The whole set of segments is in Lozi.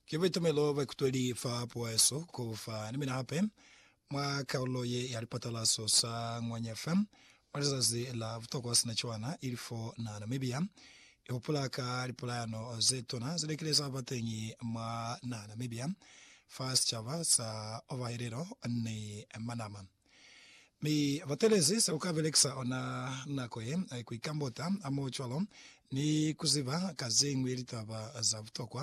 Ki buitumelo bwa ikutweli fa pueso ku fa ni mina hape mwa kalulo ye ya lipatalaso sa Ngwanya FM mwa lizazi la butokwa sina cwana ili fo na Namibia. I hupula ka lipulayano ze tuna ze likile za ba teñi mwa na Namibia fa sicaba sa Ovahelelo ni Manama. Mi ba telezi se u ka belekisa ona nako ye ku ikambota hamoho cwalo ni ku ziba ka ze ñwi litaba za butokwa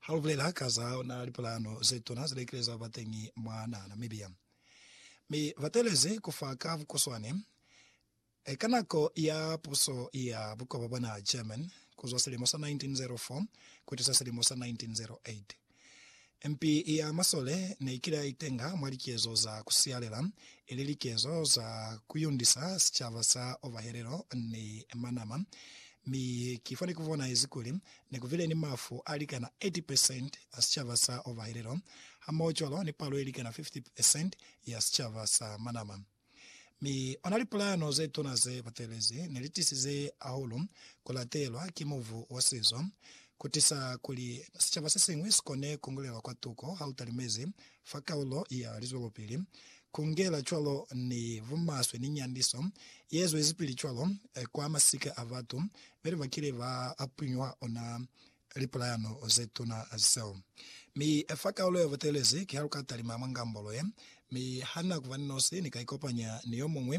ha lu bulela ka za ona lipulano ze tuna ze likile za ba teñi mwa naha Namibia. Mi ba telezi ku fa ka bukuswane Ka nako ya puso ya bukoba bwa naha German kuzwa silimo sa 1904 kutusa silimo sa 1908, mpi ya masole neikile ya itenga mwa likezo za kusialela, ili likezo za kuyundisa sicaba sa Ovahelelo ni Manama, mi ki fani kubonaezi kuli nekubile ni mafu alikana 80 percent a sicaba sa Ovahelelo, hamohocwalo ni palo ilikana 50 percent ya sicaba sa Manama. Mi ona lipulano ze tuna ze butelezi ne li tisize ahulu ku latelwa ki mubu wa sizo, ku tisa kuli sicaba se siñwi si kone ku ngulelwa kwa tuko ha u talimezi fa kaulo ya lizwelopili, ku ngela cwalo ni bumaswe ni nyandiso ye zwezipili cwalo kwa masika a batu beli ba kile ba punyuha ona lipulayano ze tuna zeo. Mi i fa kaulo ya butelezi kiha lu ka talima mwa ngambolo ye, mi ha na ku ba ni nosi, ni ka ikopanya ni yo muñwi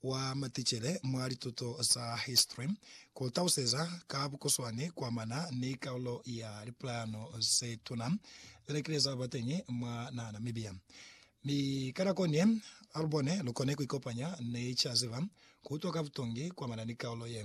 wa maticele mwa lituto za history ku lu taluseza ka bukuswani ku amana ni kaulo ya lipulayano ze tuna ze ne kile za ba teñi mwa naha Namibia. Mi ka nako ni ye, ha lu bone lu kone ku ikopanya ni ca ziba ku utwa ka butongi ku amana ni kaulo ye.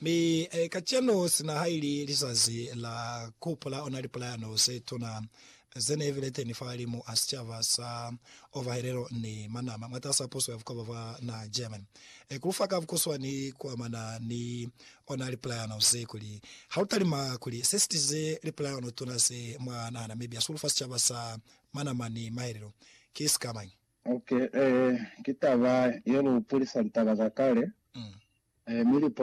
Mi kacenu, sina haili lizazi la kuhupula ona lipulayano zetuna zeneebile teni fahalimu a sicaba sa Ovahelelo ni Manama mwatas'a puso ya bukwaba bwa naha German, kulufa ka bukuswani kuamana ni ona lipulayano ze, kuli, Halutalima kuli sesitize lipulayano tuna ze mwa naha Namibia sulufa sicaba sa Manama ni Mahelelo ki sikamañi? Ok, ee, ki taba ye lu pulisa litaba za kale, ee, mi lipula